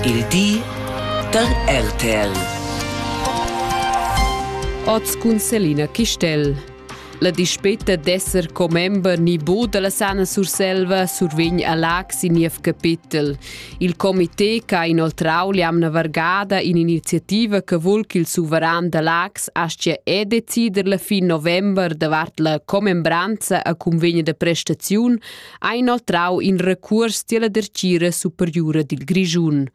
Il di da RTL. Oz cun Selina Chistel. La dispeta d'esser commember ni bu dalla Sana Surselva survegn a Lac sin niev capitel. Il comité che ha inoltrau l'amna vargada in'iniziativa che vul ch'il suveran da Lax aschia e decider la fin november davart la commembranza a convegna de prestaziun ha inoltrau in recuors tiella dertgira superiura dil Grischun.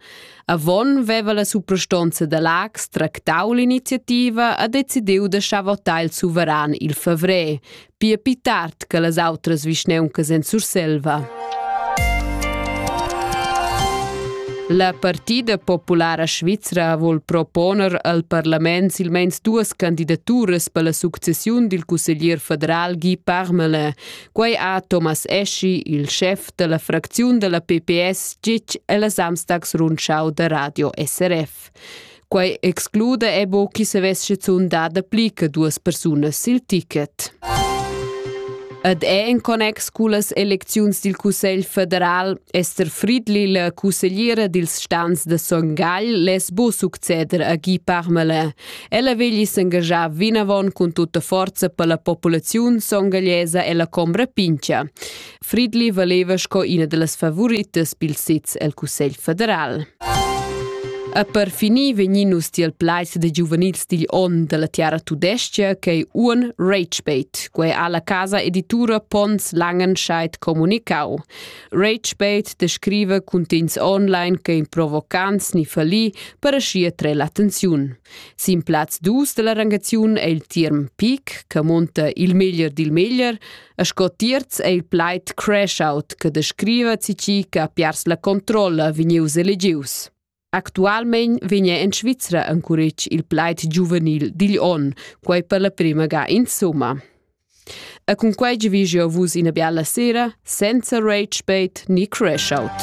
Avon veva la suprastonza da Lax tractau l'iniziativa e decidiu da schavotar il suveran il favrer, pia pi tard che las outras vischneuncas en Surselva. La Partida Populara Svizra vol proponer al parlament silmeins duas candidaturas per la successiun dil cusseglier federal Guy Parmelin, Quei ha Thomas Eschi, il schef dalla fracziun dalla PPS, gitg ella Samstags rundschau da Radio SRF. Quei exclude ebo chi savess schizun da dapli che duas persunas sil ticket. Ed è in connex con las elecziuns del Cussegl federal Esther Friedli, la consigliera dils stans de Son Gagl, les bo succeder a Guy Parmelin. Ella vegli s'engagiar vinavon cun tutta forza per la populaziun songagliesa e la combra pincha. Fridli valeva sco ina dellas favoritas pil sez el Cussegl federal. E per finir vegnin nus tiel plaiss de giuvenils digl onn della tiara tudescia ch'ei un Ragebait. Quei ha la casa editura Pons Langenscheid comunicau. Ragepage descriva cuntegns online che in provocants ni fallì per aschi attrair l'attenziun. Sin plaz 2 della rangaziun è il term peak, che monta il meglier dil meglier, a sco terz è il plaid crash out, che descriva cici che ha piars la controlla vegnius elegius. Actualmein vegna en Svizra encuretg il plaid giuvenil digl onn, quei per la prima ga insumma. E cun quei vi jeu vus ina biala sera senza rage bait ni crash out.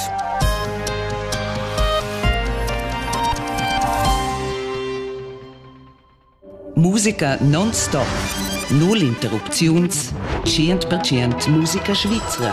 Musica non-stop. Null interrupziuns. 100% Musica svizra.